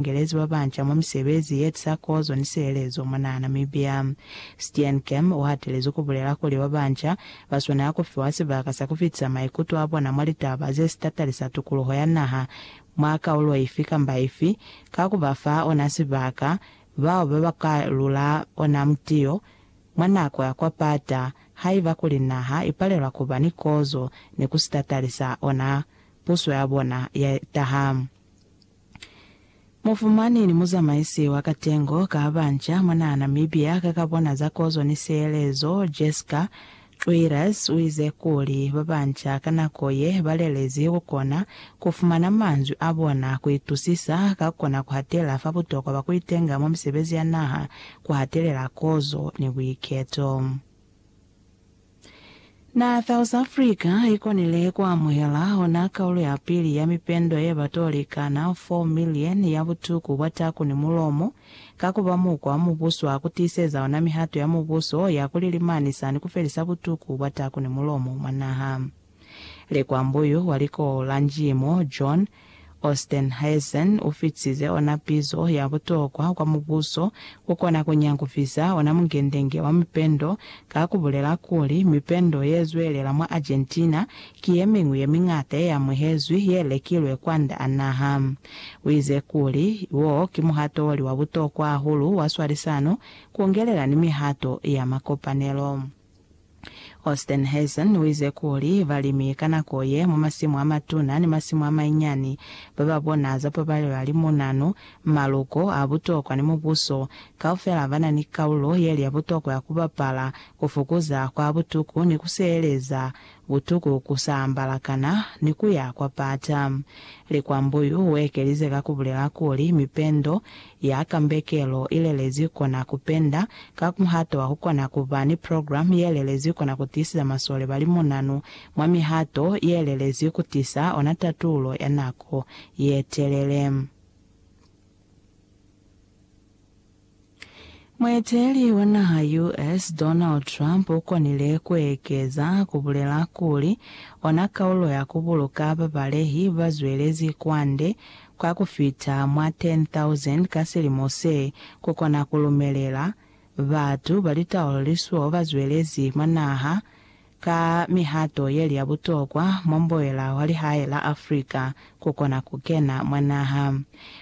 bakengelezi babanca mwa misebezi yetisa kozo ni sihelezo mwanaa Namibia. Steenkamp uhatelezi kubulela kuli babanca baswanela kufiwa sibaka sa kufitisa maikuto abona mwa litaba zesitatalisa tukuluho ya naha mwa kaulo ifi kamba ifi ka kubafa ona sibaka bao babaka lula ona mutiyo mwa nako ya kwapata haiba kuli naha ipalelwa kuba ni kozo ni kusitatalisa ona puso yabona yetaha Mufumani ni muzamaisi wa katengo ka banca mwa naha Namibia ka ka bona za kozo ni sielezo, Jesca Trueiras uize kuli, Ba banca ka nako ye ba lelezi ku kona ku fumana manzwi a bona, ku itusisa, ka kona ku hatela fa butokwa bwa ku itenga mwa misebezi ya naha, ku hatelela kozo ni buiketo. Na South Africa i konile ku amuhela ona kaulo ya pili ya mipendo ye ba toli kana 4 milioni ya butuku bwa taku ni mulomo, ka ku ba mukwa wa mubuso wa ku tiiseza ona mihato ya mubuso ya ku lilimanisa ni ku felisa butuku bwa taku ni mulomo mwa naha. Likwambo yo wa likolo la Njimo John Ostenhuysen u fitize ona pizo ya butokwa kwa mubuso ku kona ku nyangufisa ona mungendenge wa mipendo ka ku bulela kuli, Mipendo ye zwelela mwa Argentina ki ye miñwi ye miñata ye amuhezwi ye lekilwe kwand'a naha. U ize kuli, Wo ki muhato o li wa butokwa hahulu wa swalisano, ku ngelela ni mihato ya makopanelo. Ostenhuizen uize kuli, Balimi ka nako ye, mwa masimu amatuna ni masimu amainyani, bababona za pabalelo ya limunanu, maluko a butokwa ni mubuso kaufela bana ni kaulo yeli ya butokwa ya kubapala kufukuza kwa butuku ni kuseeleza Butuku ku sa ambala kana ni ku ya kwa pata. Likwambo yu u ekelize ka ku bulela kuli, Mipendo ya kambekelo i lelezi kona ku penda ka muhato wa ku kona ku ba ni programu ye lelezi kona ku tiisiza masole ba limunanu mwa mihato ye lelezi ku tisa ona tatulo ya nako ye telele. Mueteli wa naha US. Donald Trump u konile ku ekeza ku bulela kuli, ona kaulo ya ku buluka babalehi ba zwelezi kwande kwa ku fita mwa 10,000 ka silimo se, ku kona ku lumelela batu ba litaulo lisuo ba zwelezi mwa naha Ka mihato yeli ya butokwa, mwamboela wa lihae la Africa kukona kukena mwa naha.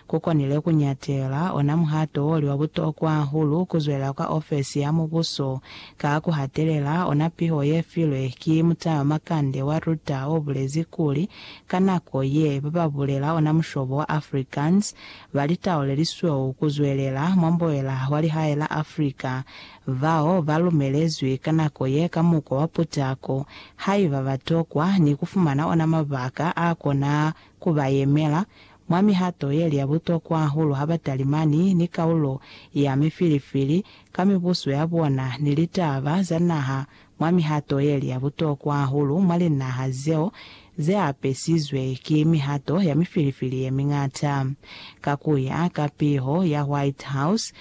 Kukonile kunyatela ona muhato woli wa butokwa hahulu kuzwelela kwa ofesi ya mubuso ka kuhatelela ona piho yefilwe ki mutamamakande wa Ruta obulezi kuli, Ka nako ye, bababulela ona mushobo wa Afrikaans balitaulelisweo kuzwelela, mwamboela wa lihae la Africa bao ba lumelezwi ka nako ye ka mukwa wa putako, haiba ba tokwa ni ku fumana ona mabaka a kona ku ba yemela mwa mihato ye li ya butokwa hahulu ha ba talimani ni kaulo ya mifilifili ka mibuso ya bona ni litaba za naha mwa mihato ye li ya butokwa hahulu mwa linaha zeo ze apesizwe ki mihato ya mifilifili ye miñata. Ka ku ya ka piho ya White House,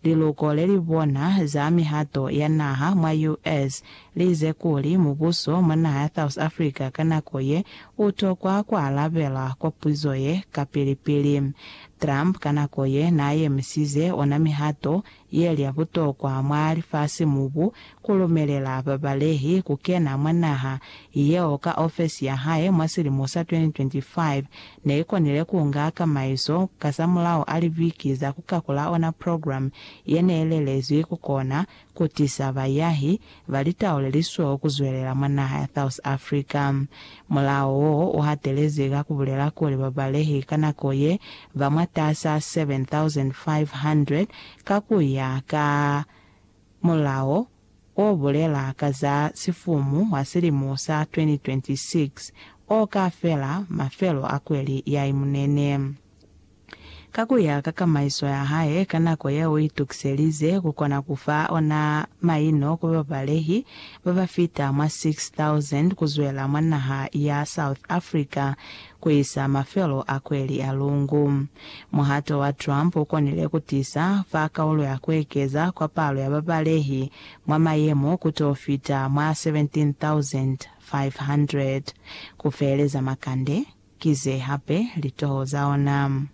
Liluko le li bona za mihato ya naha mwa US. li ize kuli, Mubuso mwa naha ya South Africa ka nako ye u tokwa ku alabela kwa puzo ye kapili-pili. Trump ka nako ye n'a yemisize ona mihato ye li ya butokwa mwa lifasi-mubu ku lumelela babalehi ku kena mwa naha yeo ka ofesi ya hae mwa silimo sa 2025 ne i konile ku nga kamaiso kazamulaho a libiki za ku kakula ona programme ye ne i lelezwi ku kona ku tisa bayahi ba litau le li sweho ku zwelela mwa naha ya South Africa. Mulao wo u hatelezi ka ku bulela kuli babalehi ka nako ye ba mwatas'a 7,500 ka ku ya ka mulao, o bulela ka za sifumu wa silimo sa 2026 o ka fela mafelo a kweli ya imunene. Ka ku ya ka kamaiso ya hae, ka nako ye u itukiselize ku kona ku fa ona maino ku babalehi ba ba fita mwa 6,000 ku zwela mwa naha ya South Africa ku isa mafelo a kweli a lungu. Muhato wa Trump u konile ku tisa fa kaulo ya ku ekeza kwa palo ya babalehi mwa mayemo ku t'o fita mwa 17,500. Ku feeleza makande, ki ze hape litoho za ona.